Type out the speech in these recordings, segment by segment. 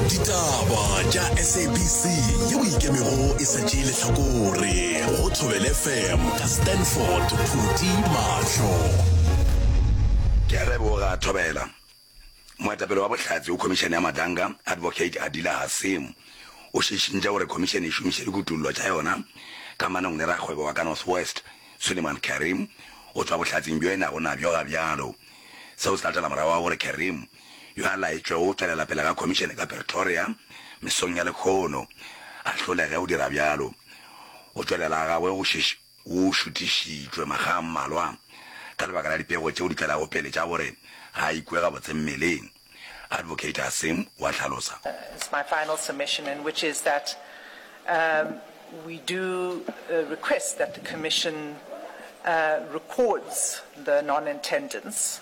ditaba tša sabc ye o ikemego e sa tšee lehlakore go thobele fm ka stanford phuti mahlo ke a leboga thobela moetapele wa bohlatse o khomišene ya matanga advocate adila hasemo o šišintša gore khomišene e šomiše dikutullo tša yona ka manong le rakgwebo wa ka north west suleiman karim go tšwa bohlatseng bjo e nago nabjo ga bjalo seo se latela morago wa gore karim yo a laetšwego go tšwelela pele ga khomišene ka Pretoria mesong ya lekgono, a hlolege go dira bjalo. Go tšwelela ga gagwe go šešo go šuthišitšwe makga a mmalwa ka lebaka la dipego tšeo di tlago pele tša gore ga a ikwe gabotse mmeleng, Advocate Hasim o a hlalosa. It's my final submission and which is that we do request that the Commission records the non-attendance.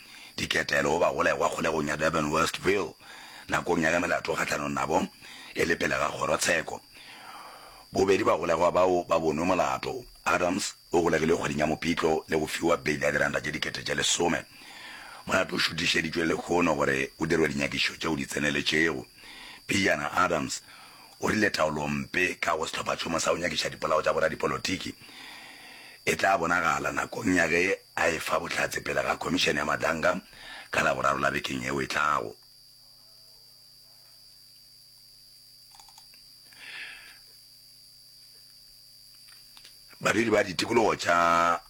diketelo go bagolegwa kgolegong ya Durban Westville nakong ya ge melato kgahlanong nabo e le pele ga kgorotsheko. Bobedi bagolegwa bao ba bonwe molato. Adams o golegilwe kgweding ya Mopitlo le go fiwa beili ya diranta tše dikete tše lesome. Molato o šuthišeditšwe lehono gore o dirwe dinyakišišo tšeo di tseneletšego. Pejana Adams O rile taolompe ka go sehlophachoma sa go nyakiša dipolao tša boradipolotiki e tla bonagala nakong ya ge a e fa bohlatse pele ga Khomišene ya Madanga ka Laboraro la bekeng yeo e tlago. Badudi ba ditikologo tša.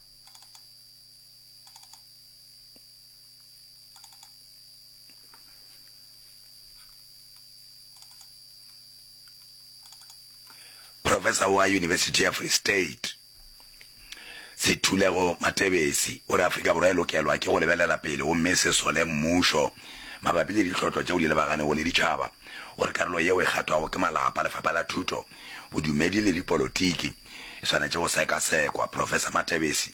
professor wa university ya free state sethulego matebesi o re afrika borwa e lokelwa ke go lebelela pele gomme e se sole mmušo mabapi le ditlhotlo tšeo di lebaganego le ditšhaba o re karolo yeo e kgathwago ke malapa lefapha la thuto bodumedi le dipolotiki e swanetše go sekasekwa professor matebesi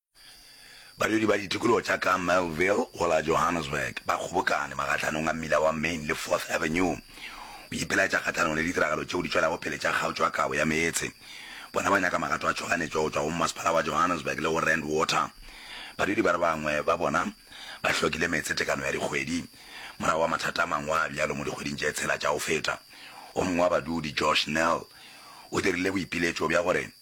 Badudi ba ditikologo tša ka Melville go la Johannesburg ba kgobokane magahlanong a mmila wa Main le Fourth Avenue go ipelaetša kgahlanong le ditiragalo tšeo di tšwelago pele tša kgaotšo ya kabo ya meetse. Bona ba nyaka magato a tšhoganetšo go tšwa go Mmasepala wa Johannesburg le go Rand Water. Badudi ba re bangwe ba bona ba hlokile meetse tekano ya dikgwedi morago ga mathata a mangwe a bjalo mo dikgweding tše tshela tša go feta. O mongwe wa badudi, Josh Nel, o dirile boipiletšo bja gore,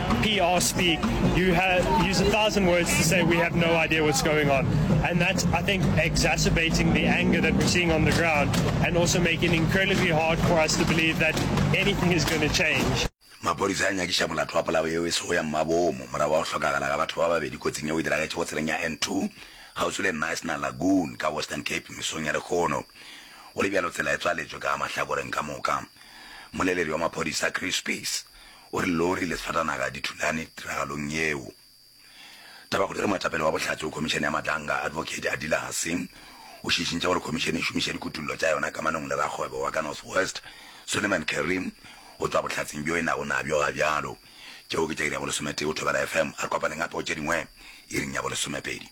PR speak, you have, use a thousand words to say we have no idea what's going on. And that's, I think, exacerbating the anger that we're seeing on the ground and also making it incredibly hard for us to believe that anything is going to change. maphodisa a nyakiša molato wa polao yeo e sego ya mmabomo morago wa go hlokagala ga batho ba babedi kotsing yeo e diragetše go tseleng ya n2 kgauswi le national lagoon ka western cape mesong ya lekgono go le bjalo tsela e tswaletšwe ka mahlakoreng ka moka moleledi wa maphodisa chris peace O re lori le sfatanaga di thulane tiragalong yeo. Tabakgodiere Moetapele wa Bohlatse go Khomišene ya Matlanga, Advocate Adila Hasing, o šišintše gore khomišene e šomiša dikutullo tša yona kamanong le rakgwebo wa ka North West, Suleiman Kareem, go tšwa bohlatsing bjo e nago nabjo ga bjalo. Tšeo ke tša iri ya bolesome-tee go Thobela FM. A re kopaneng gape go tše dingwe iring ya bolesome-pedi.